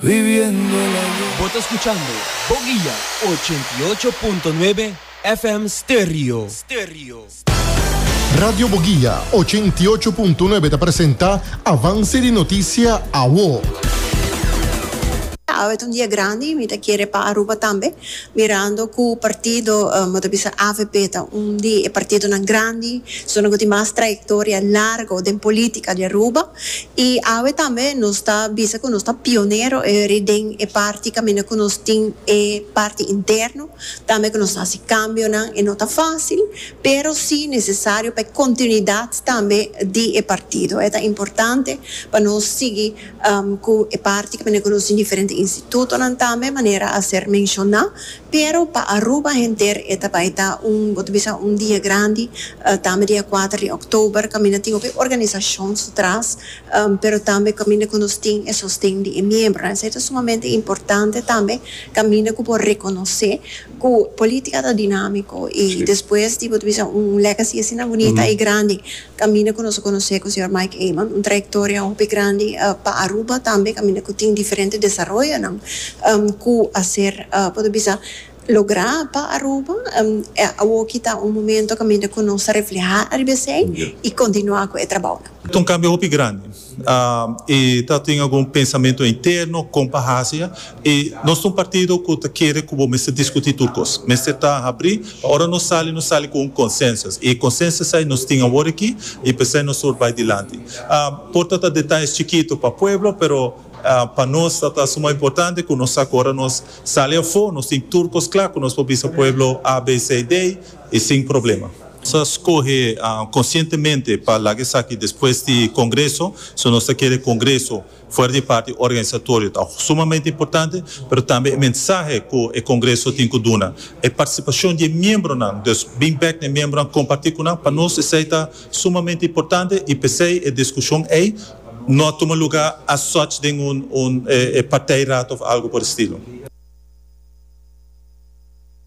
Bo ta escuchando Boguia ochenta i ocho punto nuebe FM Stereo. Radio Boguia ochenta i ocho punto nuebe ta presenta Avance di Noticia Awo. Awe ta un dia grandi, mi ta kere pa Aruba tambe, mirando cu partido, bo ta bisa avp ta un di e partidonan grandi, zona cu tin mas trayectoria largo den politica di Aruba. I awe tambe nos ta bisa ku nos ta pionero eri den e parti kaminda ku nos tin e parti interno, tambe ku nos ta hasi kambionan. E no ta fásil, pero sí nesesario pa e kontinuidat tambe di e partido. E ta importante pa nos sigui ku e parti kaminda ku nos tin diferente institutonan tambe, manera a ser menshoná. Pero pa Aruba henter e ta bai ta un, bo ta bisa un dia grandi, tambe dia kuater di òktober, kaminda tin hopi organisashon su tras, pero tambe kaminda ku nos tin e sosten di e miembronan. Esei ta sumamente importante tambe, kaminda ku bo rekonosé ku polítika ta dinámiko i despues di bo ta bisa un legacy asina bunita i grandi, Caminda cu nos a conoce cu Señor Mike Eman, un trayectoria hopi grandi pa Aruba, tambe caminda cu tin diferente desaroyonan cu a ser, poder bisa, logra pa Aruba. Awoki ta un momento caminda cu nos ta refleha ariba esey y continua cu e trabounan. Ta un cambio hopi grandi. E ta tin algun pensamentu interno kon pa hasi a. E nos ta un partido ku ta kere ku bo mester diskutí tur kos. Mester ta habrí pa ora nos sali, nos sali ku un konsensus. E konsensus ei nos tin awor aki i p'esei nos tur bai dilanti. Por ta ta detayes chikitu pa pueblo pero pa nos ta ta suma importante ku nos sa ku ora nos sali afó nos tin tur kos kla ku nos por bisa pueblo A, B, C i D i sin problema. Nos a skohe konsientemente pa laga esaki despues di Kongreso, so nos ta kere e Kongreso fuera di parti organisatorio ta sumamente importante, pero tambe e mensahe ku e Kongreso tin ku duna, e partisipashon di e miembronan, dus bin bèk na e miembronan kompartí ku nan, pa nos esei ta sumamente importante i p'esei e diskushon ei no a tuma lugá as such den un partijraad òf algu por e stilo.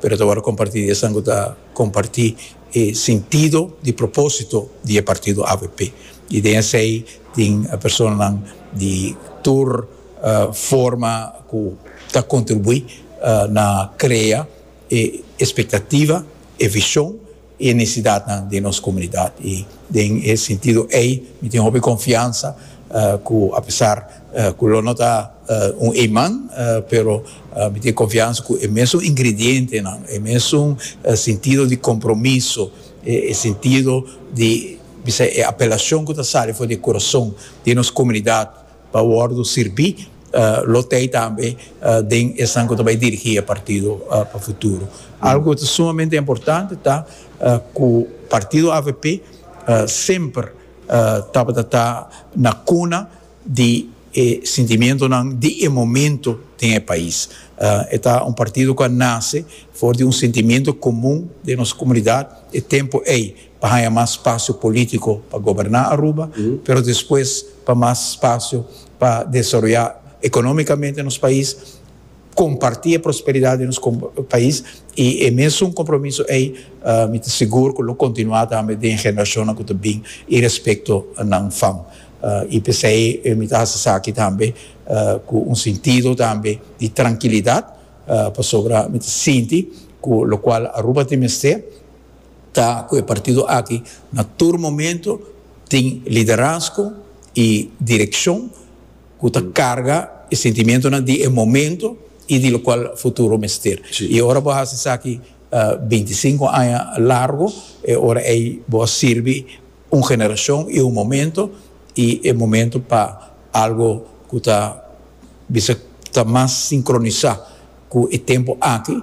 Pero ta wòrdu kompartí. Esnan ku ta kompartí e sintido di propósito di e partido avp i den esei tin personanan di tur forma ku ta kontribuí na krea e espektativa, e vishon. e necesidadnan den nos comunidad y den e sentido ey mi tin hopi confiansa cu apesar cu lo no ta un iman pero mi tin confiansa cu e mesun ingredientenan, e mesun sentido di compromiso, e sentido di bisa e apelacion cu ta sali for di e corazon den nos comunidad. pa wòrdu sirbi lo tei tambe den esnan ku ta bai dirigí e partido pa futuro. Algu ku ta sumamente importante ta ku partido avp semper tabata ta na kuna di e sentimentunan di e momento den e pais. E ta un partido ku a nase for di un sentimentu komun den nos komunidat e tempu ei. pa haña mas spasio polítiko pa goberná Aruba, pero despues pa mas spasio pa desaroyá ekonómikamente nos pais, kompartí e prosperidat di nos pais i e mesun kompromiso ei mi ta sigur ku lo kontinuá tambe den generashonnan ku ta bin i respekto nan fam. I p'esei mi ta hasi esaki tambe ku un sintido tambe di trankilidat pasobra mi ta sinti ku lokual Aruba tin mester, ta cu e partido aki na tur momento tin liderazgo y direccion cu ta carga e sentimientonan di e momento y di locual futuro mester. Y ora bo a haci esaki binti i sinku aña largo e ora ey bo a sirbi un generacion y un momento y e momento pa algo cu ta bisa ta mas sincronisa cu e tempo aki.